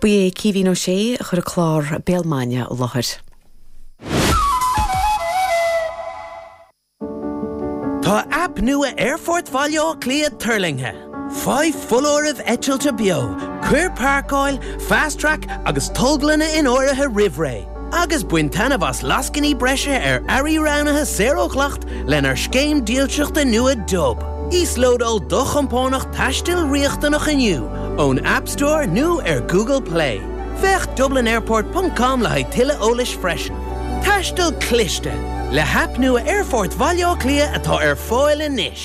Ba é Caoimhín Ó Sé a chuir an clár Béal Mine i láthair. Tá aip nua Aerfort Bhaile Átha Cliath tuirlingthe. Faigh foláirimh eitilte beo, cuir páirceáil, Fast Track agus tolglanna in áirithe roimh ré. agus bain taitneamh as lascainí breise ar earraí roghnaithe saor ó dhleacht lenár scéim dílseachta nua Dub. Íoslódáil do chompánach taistil riachtanach inniu ón App Store nó ar Google Play. Féach dublinairport ponc com le haghaidh tuilleadh eolais freisin. Taisteal cliste, le haip nua Aerfort Bhaile Átha Cliath atá ar fáil anois!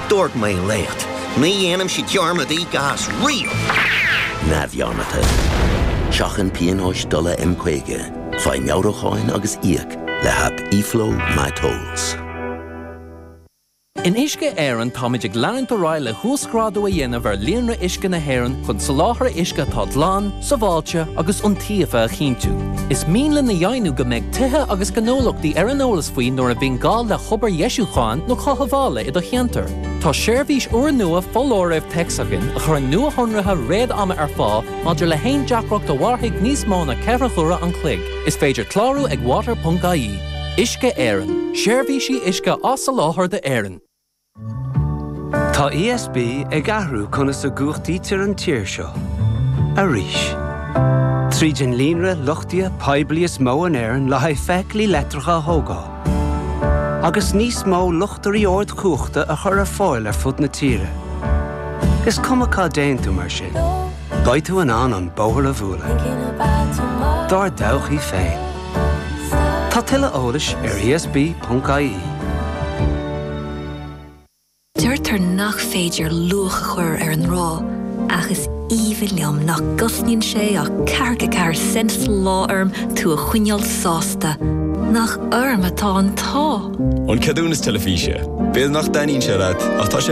Dúirt mé leat, ní dhéanaimse dearmad, i gcás riail neamhdhearmadta. Seachain pionóis dola M50, faigh meabhrúcháin agus íoc le haip eFlow MyTolls. In Uisce Éireann táimid ag leanúint ar aghaidh le huasghrádú a dhéanamh ar líonra uisce na hÉireann chun soláthar uisce atá glan, sábháilte agus iontaofa a chinntiú. Is mian linn a dheimhniú go mbeidh tithe agus gnólachtaí ar an eolas faoi nuair a bhíonn gá le hobair dheisiúcháin nó cothabhála i do cheantar. Tá seirbhís úrnua foláirimh téacs againn a chuireann nuashonruithe réad-ama ar fáil maidir le haon deacracht a mhairfidh níos mó ná ceithre huaire an chloig. Is féidir clárú ag water.ie. Uisce Éireann. Seirbhísí uisce á soláthar d'Éirinn. Tá ESB ag athrú conas a gcumhachtaítear an tír seo. Arís. Tríd an líonra luchtaithe poiblí is mó in Éirinn le haghaidh feithiclí leictreacha a thógáil, agus níos mó luchtairí ardchumhachta a chur ar fáil ar fud na tíre. Is cuma cá dtéann tú mar sin. Beidh tú in ann an bóthar a bhualadh dár dtodhchaí féin. Tá tuilleadh eolais ar ESB.ie. Deirtear nach féidir luach a chur ar an ngrá, ach is aoibhinn liom nach gcosnaíonn sé ach ceathracha ceathair cent sa lá orm tú a choinneáil sásta. Nach orm atá an t-ádh! An ceadúnas teilifíse. B'fhéidir nach dtaitníonn sé leat, ach tá sé.